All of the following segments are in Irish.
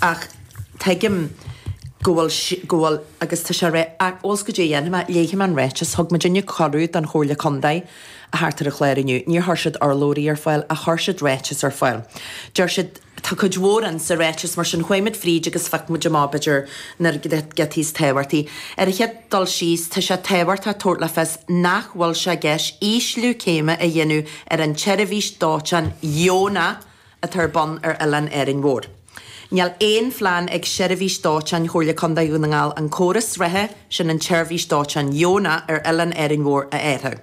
ach tuigim go bhfuil, go bhfuil agus tá sé réidh ach ós caidé a dhéanfaidh mé, léifidh mé an ráiteas, thug muidinne cuireadh don Chomhairle Contae a theacht ar an chlár inniu, níor chuir siad urlabhraí ar fáil ach chuir siad ráiteas ar fáil. Deir siad, tá cuid mhór in sa ráiteas mar sin chuaigh muid fríd agus phioc muid amach b'fhéidir na giotaí is tábhachtaí. Ar an chéad dul síos, tá sé tábhachtach tabhairt le fios nach bhfuil sé i gceist ísliú céime a dhéanamh ar an tseirbhís dóiteáin dheonach, atá ar bun ar oileán Árainn Mhór. Níl aon phlean ag Seirbhís Dóiteáin Chomhairle Contae Dhún na nGall an córas reatha sin an tseirbhís dóiteáin dheonach ar oileán Árainn Mhór a athrú.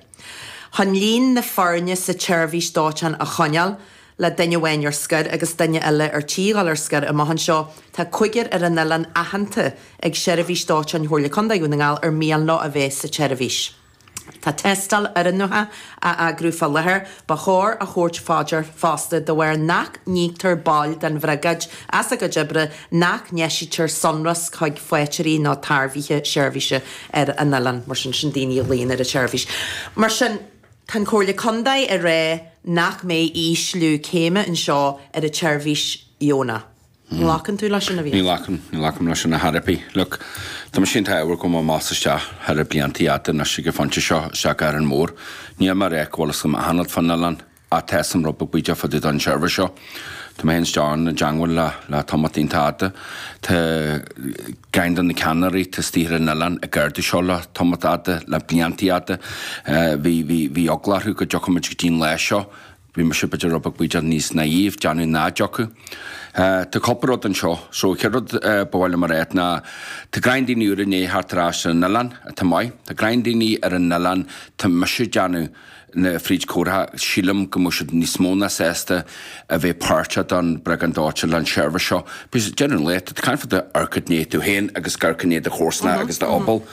Chun líon na foirne sa tseirbhís dóiteáin a choinneáil, le duine amháin ar scor agus duine eile ar tí dhul ar scor amach anseo, tá cúigear ar an oileán aitheanta ag Seirbhís Dóiteáin Chomhairle Contae Dhún na nGall ar mian leo a bheith sa tseirbhís. Tá tástáil oiriúnaithe á eagrú fá láthair. Ba chóir a thabhairt fá dear fosta de bharr nach n-íoctar baill den Bhriogáid as a gcuid oibre nach n-eisítear sonrasc chuig faighteoirí nó tairbhithe seirbhíse ar an oileán, mar sin sin daoine a ghlaonn ar an tseirbhís. Mar sin tá an Chomhairle Contae ag rá nach mbeidh ísliú céime anseo ar an tseirbhís dheonach. Ní ghlacann tú leis sin? Ní ghlacaim, ní ghlacaim leis sin, ar chor ar bith. Look, tá mise i ndiaidh a bheith ag gabháil amach is isteach thar na blianta fhada anois ag an phointe seo, isteach go hÁrainn Mhór. Níl mé ag rá go bhfuil fhios agam achan rud fán oileán, ach tá fhios agam rud beag bídeach fá dtaobh den tseirbhís seo. Tá mé féin isteach ann i dteangmháil le, le tamalt iontach fada. Tá ceann de na ceannairí atá istigh ar an oileán ag ardú seo le tamalt fhada, le blianta fhada. Bhí, bhí, bhí eagla orthu go dtiocfadh muid go dtí'n lá seo. Bhí mise b'fhéidir rud beag b'fhéidir níos naive, ag déanamh nach dtiocfadh. Tá cúpla rud anseo. So chéad rud ba mhaith liom a rá ná tá greim daoine úra i ndiaidh theacht ar ais ar an oileán, atá maith. Tá greim daoine ar an oileán tá mise déanamh na fríd comhartha. Sílim go mbeadh siad níos mó ná sásta a bheith páirteach don bhriogáid dóiteáin leis an seirbhís seo. Because generally tá tú ag caint fá dtaobh de amharc i ndiaidh tú féin agus ag amharc i ndiaidh do chomharsana agus do fhobal.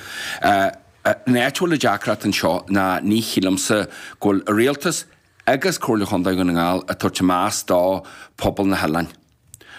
An áit a bhfuil an deacracht anseo ná ní shílimse go bhfuil an rialtas, agus Comhairle Chontae Dhún na nGall ag tabhairt an meas do phobal na hoileáin.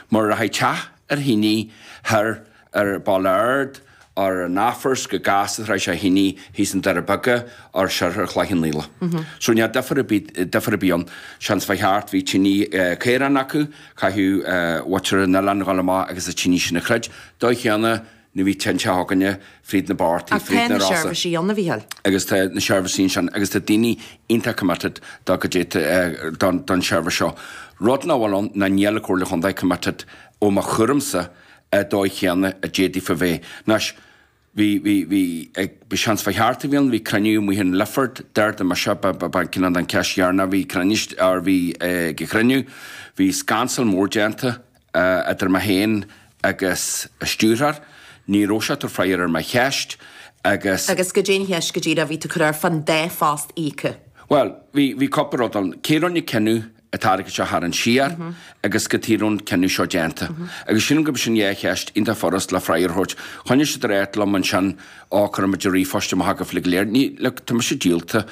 Mar rachaidh teach ar thine thoir ar an Bhaile Ard nó ar an Athphort chomh gasta is a rachaidh sé ar thine thíos i nDoirí Beaga nó soir thart Chloich Cheann Fhaola. So níl difear ar bith ann. Seans fá cheart bhí tine caorán acu, caithfidh muintir an oileáin dhul amach agus an tine sin a throid. Dóigh chéanna Ní bhíonn tinte againne fríd na bpáirtí, Ach fríd tá na na rása. seirbhísí ann, a Mhicheál. Agus tá na seirbhísí ansin agus tá daoine iontach committed do go dti don don seirbhís seo. Rud nach bhfuil ann ná níl an Chomhairle Chontae committed i mo thuairimsa an dóigh chéanna a d'fhéadfadh a bheith. Anois, bhí bhí bhí ag bhí seans fá cheart a bhí ann, bhí cruinniú amuigh in Lifford d'ardaigh mise ba ba ba cinneadh an cheist dheireanach a bhí cruinnis ar bhí ag an gcruinniú. Bhí scansal mór déanta idir mé féin agus an stiúrthóir, ní raibh sé ag tabhairt freagair ar mo cheist agus. Agus goidé an cheist go díreach a bhí tú a chur air fán dá phost íocadh? Bhuel, bhí, bhí cúpla rud ann. Cé a rinne an cinneadh an t-airgead seo a tharraingt siar agus cad chuige a raibh an cinneadh seo déanta. Agus sílim go mba sin dhá cheist iontach furast le freagra a thabhairt. Choinnigh siad ag ráit liom ansin á cuirfidh muid ríomhphost amach chugaibh uilig go léir. Ní le, tá mise díolta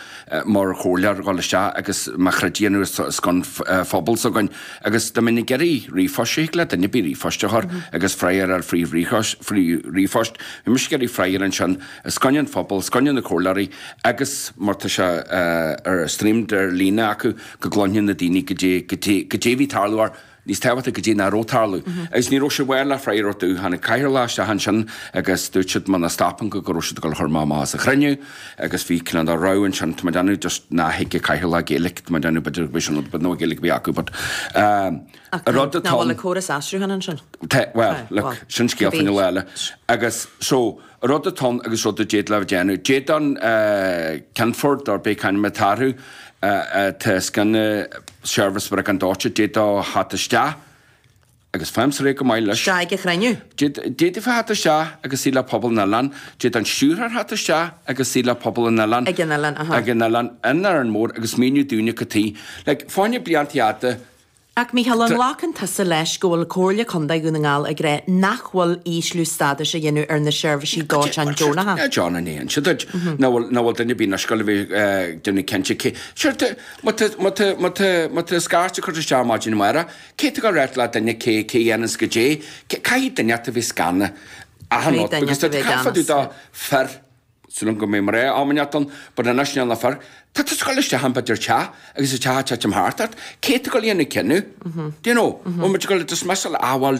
mar chomhairleoir a dhul isteach agus mo throid a dhéanamh ar son phobal s'againn agus dá mbeinn ag iarraidh ríomhphost, sure thig le duine ar bith ríomhphost a chur agus freagar a fháil fríd ríomhphost. Bhí mise ag iarraidh freagar ansin os coinne an phobail, os coinne na gcomhairleoirí agus mar tá sé ar streamed ar líne acu go gcloisfidh na daoine goidé a bhí ag tarlú or níos tábhachtaí goidé nach raibh ag tarlú. Agus ní raibh siad ábalta freagra a thabhairt domh. Tháinig an cathaoirleach isteach ansin agus dúirt siad muna stopfainn go go raibh siad ag dul a chur mé amach as an chruinniú agus bhí cineál de row ansin tá mé ag déanamh just nach dtuigfeadh an cathaoirleach Gaeilge tá mé ag déanamh b'fhéidir bhí sin but no Gaeilge a bhí acu but Ach rud atá Nach bhfuil córas aistrithe ansin? Tá, well, look, sin scéal fada eile. Agus, so, rud atá ann agus rud a d'fhéadfadh déanamh. D'fhéadfadh an Ceann Foirne, ar bith c'ainm atá orthu, atá os cionn na seirbhíse briogáid dóiteáin, d'fhéadfadh theacht isteach agus faighimse ar aghaidh go maith leis. isteach ag an chruinniú. D'fhéadfadh theacht isteach agus suí le pobal an oileáin. D'fhéadfadh an Stiúrthóir theacht isteach agus suí le pobal an oileáin, ag an oileán, in Árainn Mhór agus míniú dúinn cad chuige. Like, fá choinne blianta fada. Ach a Mhicheáil, An nglacann tusa leis go bhfuil Comhairle Contae Dhún na nGall ag rá nach bhfuil ísliú stádais á dhéanamh ar na seirbhísí dóiteáin deonacha? John, An ndéanann siad? An bhfuil duine ar bith anois ag dul a bheith ag déanamh cinnte de cé. Sure, tá, má tá, má tá, má tá, má tá scairt curtha isteach maidin amárach, cé atá ag dul a ráit le duine cé, cé a dhéanas goidé, cé, caithfidh duine inteacht a bheith os cionn achan rud, because tá, caithfidh tú do, fir, Sin an go mbeidh mar aon fháinne ort an bud a n-aisnéanfar, tá tú ag dul isteach i b'fhéidir teach agus an teach ag titim thart ort, cé atá ag dul a dhéanamh cinneadh? Do you know? Bhuel, muid ag dul i dtosmheascadh le athfháil.